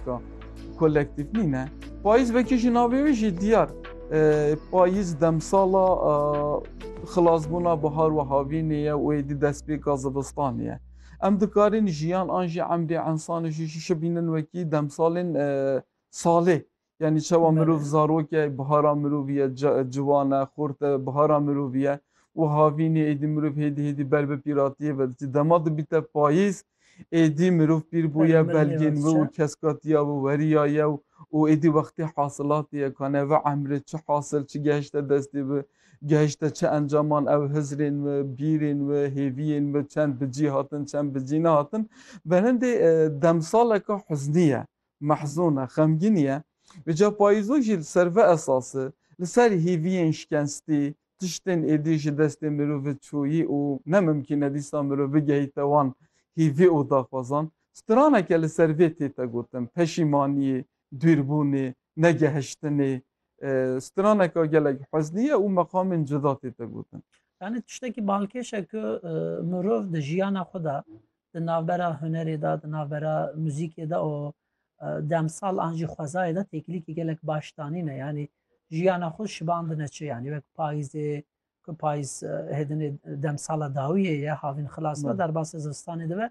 Ka kolektif nîne. Payîz vekî ji navê wî jî diyar. Payîz demsala xilasbûna bihar û havînê ye û êdî destpêka zivistanê ye. Em dikarin jiyan an jî emrê ensanê jî jî şi bînin wekî demsalên salê. Yanî çawa mirov zarok e, bihara mirovî ye, ciwan e, xort e, bihara mirovî ye û havînê êdî mirov hêdî hêdî ber bi pîratiyê ve dicî. Dema dibîte payîz Êdî mirov pîr bûye, belgên wê û keskatiya wê weriya ye û û êdî wextê hasilatê ye ka neve emrê çi hasil çi gehişte destê wê, gehişte çi encaman ew hizrên wê, bîrên wê, hêviyên wê çend bi cî hatin, çend bi cî nehatin. Belendê demsaleke huznî ye. Mehzûn e, xemgîn ye. Îca payîzo jî li ser vê esasê, li ser hêviyên şikestî, tiştên êdî ji destê mirovê çûyî û ne mimkîn e dîsa mirov bigehîte wan hêvî û daxwazan, straneke li ser vê tête gotin, peşîmaniyê, dûrbûnê, negehiştinê, straneke gelek huznî ye û meqamên cuda tête gotin. Yanî tiştekî balkêş e ku mirov di jiyana xwe de di navbera hunerê de, di navbera muzîkê de û demsal an jî xwezayê de têkilîkî gelek baş danîne. Yanî jiyana xwe şibandine çi yanî wek payîzê ku payîz hêdinê demsala dawiyê ye havîn xilas e derbasê zivistanê dibe.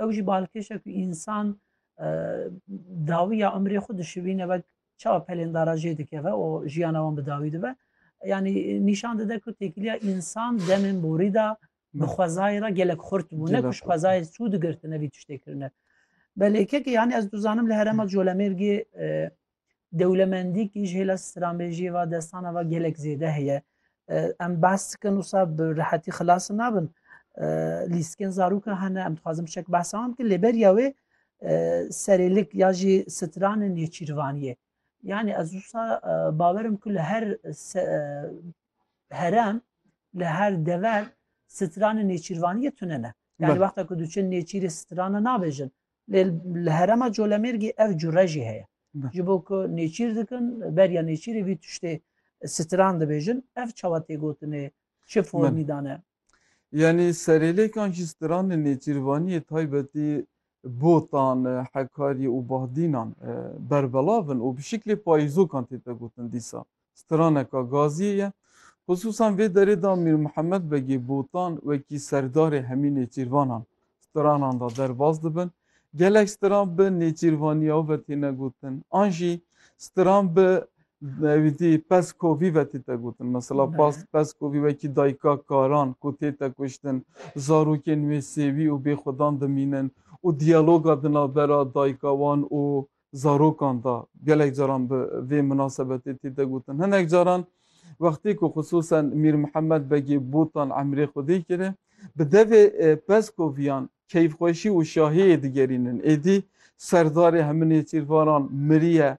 Ew jî balkêş e ku însan dawiya umrê xwe dişivîne wek çawa pelên dara jê dikeve û jiyana wan bi dawî dibe. Yanî nîşan dide ku têkiliya însan demên borî de bi xwezayê re gelek xurt bû ne kuş xwezayê sû digirtine vî tiştê kirine belê kekê yanî ez dizanim li herema colemêrgê dewlemendî kî ji hêla stranbêjiyê va destana va gelek zêde heye em behs dikin wisa bi rehetî xilas nabin lîskin zarûka hene em dixwazim şek behsa wan bikin lêberiya wê serêlik ya jî stranê nêçîrvaniyê yanî ez wisa bawerim ku li her herem li her dever stranên nêçîrvaniyê tune ne. Yani Bel. wexta ku diçin nêçîrê strana nabêjin. Lê li herema Colemêrgî ev cure jî heye. Bel. Ji bo ku nêçîr dikin, beriya nêçîrê vî tiştê stran dibêjin. Ev çawa tê gotinê, çi formî dane? Yanî serêlêkan jî stranên nêçîrvaniyê taybetî botan, hekarî û bahdînan berbelav in û bi şiklê payîzokan têde gotin dîsa. Straneka gaziyê ye. Xisûsan vê derê de Mîr Mihemed Begê Botan wekî serdarê hemî nêçîrvanan stranan de derbas dibin. Gelek stran bi nêçîrvaniya ve têne gotin an jî stran bi wîdî peskovî ve tête gotin. Mesela peskovî wekî dayika karan ku tête kuştin, zarokên wê sêwî û bêxwedan dimînin û diyaloga di navbera dayika wan û zarokan de gelek caran bi vê minasebetê tê de gotin. Hinek caran wextê ku xisûsen Mîr Mihemed Begê Botan emrê Xwedê kiri, bi devê e, Peskoviyan keyfxweşî û şahiyê digerînin. Êdî serdarê heminê çîrvaran miriye.